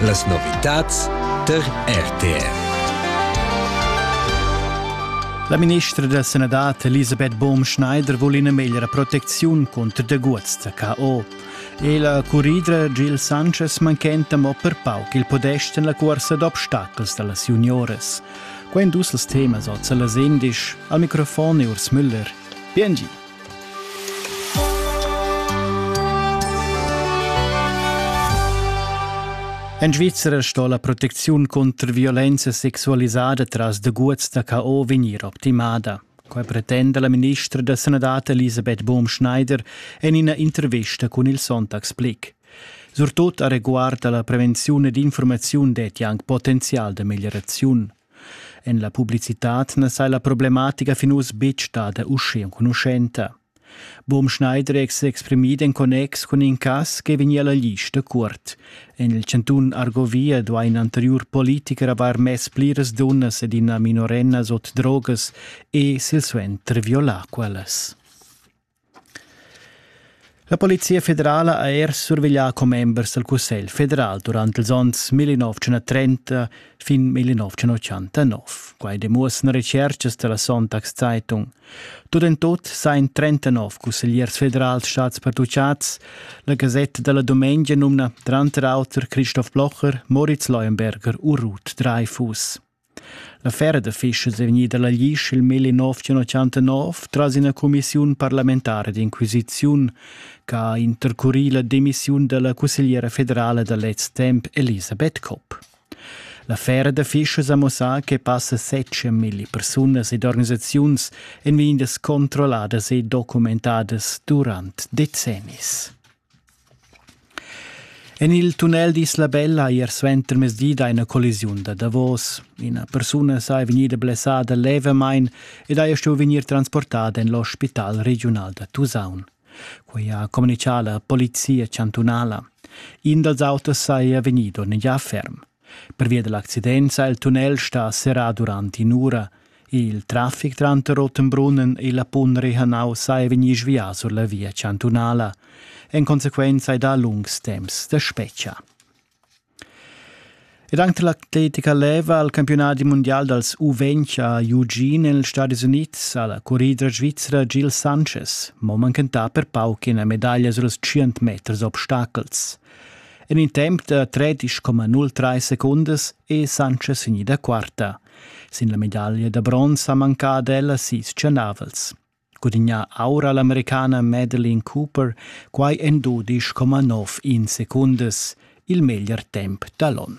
Las novitads tar RTR. La ministra da sanadad Elisabeth Baum-Schneider vul ina meglra protecziun cunter daguots da KO. E la curridra Gil Sanchez manchenta mo per pauc il podest en la cuorsa d'obstacels da las junioras. Quei dus els temas oz las endisch. Al microfon è Urs Müller. Bien En Svizra sto la protecziun contr violenza sexualisada tras deguts da KO vegnir optimada. Quai pretenda la ministra da sanadad Elisabeth Bohm-Schneider en ina intervista cun il Sonntagsblick. Surtut a reguard la prevenziun ed informaziun detti anche potenzial da miglioraziun. En la publicitad na sai la problematica fin uss betg stada uschè enconuschenta. Boom Schneider è s'exprimì en connex cun in cas che vegnia la lista curt. En il chantun Argovia duai in anteriur politicher avair mess pliras dunnas ed ina minorenna sot drogas e silsuenter violà quellas. La Polizia federala ha er surveglià commembers dal Cussegl federal durant ils onns 1930 fin 1989. Quai demuossan retschertgas da la Sonntagszeitung. Tut en tut sain 39 cussegliers federals stads pertuchads. La Gasetta della Domenica numna tranter auter Christoph Blocher, Moritz Leuenberger u Ruth Dreifuss. L'affera d'affischas è vegnida la glisch il melli nov tschantanov tras ina cumissiun parlamentara d'inquisiziun che ha intercurì la demissiun da la cussegliera federala da lez temp Elisabeth Kopp. L'affera d'affischas ha mussà che passa setje milli persunas ed organisaziuns èn vegnidas controlladas e documentadas durant decennis. En il tunnel d'Isla Bella ier suentermezdi da ina collisiun da davos. Ina persuna saja vegnida blessada levamain ed haja stuì vegnir transportada en l'ospital regiunal da Tusaun. Quai ha communitgà la polizia chantunala. In dals autos saja vegnido negià ferm. Pervia dall'accidenza ha il tunnel stà serrà durant in'ura. Il traffic tranter Rottenbrunnen e la Pun Rehanau saja vegnì svià sur la via chantunala. En consequenza è da lungs temps da spetga. Ed anche l'atletica leva al campionat mondial dals U20 a Eugene negli Stati Units ha la corrida svizzera Gil Sanchez mo manchentà per pauc ina medaglia sur els 100 meters obstacels. En in temp da 13,0 secundas è Sanchez vegnida quarta. Sin la medaglia da bronz ha mancà ad ella sis chanavels. Gudignà aura l'americana Madeline Cooper quai en 12,9 secundas, il meglier temp da l'on.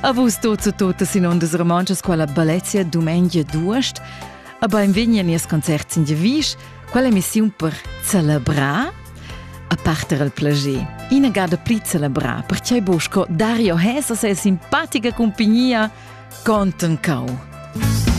A vus tuts e tutas in ondas romontschas quella Balezia dumengia d'uost. A benvegni a nies concert sin Devisch, quella emissiun per celebrar a parter al plager. Ina gada pli celebrar, perché busco Dario Hesa se simpatica compagnia conten cau.